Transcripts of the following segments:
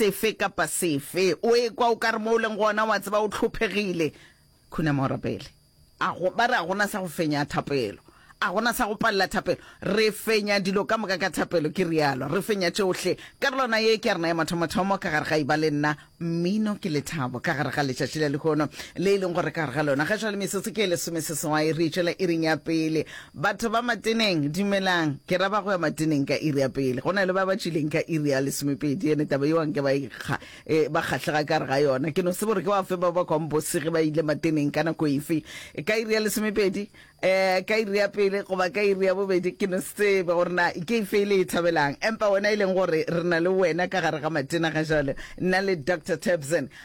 sefe kapa sefe, o ekwa o ka re mo o leng gona wa tseba o tlhophegile, khunama o rapele. A go, ba re a gona sa go fenya thapelo, a gona sa go palela thapelo. Re fenya dilo ka moka ka thapelo, ke realo. Re fenya tšohle. Karolwana ye ke ya rena ya mathomothomo ka gare ga Eba le Nna, Mmino ke Lethabo, ka gare ga letšatši la lehono le e leng gore ka gare ga lona ga jwale metsotso ke e lesomeseswai re e tšwela iring ya pele. Batho ba mateneng, dumelang. Ke ra ba go ya mateneng ka iri ya pele. Go na le ba ba tšwileng ka iri ya lesomepedi, ene taba yeo anke ba e kga, e, ba kgahlega ka gare ga yona. Ke no se bore ke ba fe ba ba kwang bose ge ba ile mateneng ka nako efe, ka iri ya lesomepedi, eh, ka iri ya pele goba ka iri ya bobedi. Ke no se tsebe gore na ke efe e le e thabelang. Empa wena e leng gore re na le wena ka gare ga matena ga jalo, nna le Doctor Tabson,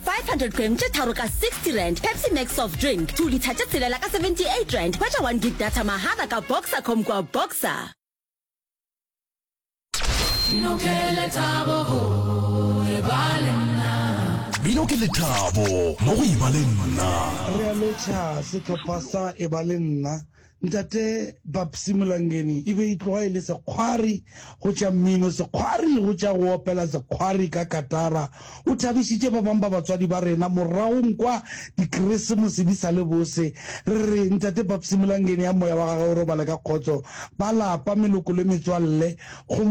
500 g tše tharo ka 60 rand pepsi max soft drink 2 litha tše tshelela ka 78 rand hwetša 1 gig data mahala ka boxer com kua boxer Bino ke lethabo go e ba le nna. Bino ke lethabo mo go e ba le nna. Re a metšha sehlopha sa e ba le nna Ntate Babsy Molangeni e be e tloga e le sekgwari go tša mmino, sekgwari go tša go opela, sekgwari ka katara. O thabišitše ba bang ba batswadi ba rena moragong kwa Dikresemose di sa le bose. Re re Ntate Babsy Molangeni a moya wa gagwe o robale ka kgotso, ba lapa, meloko le metswalle go mo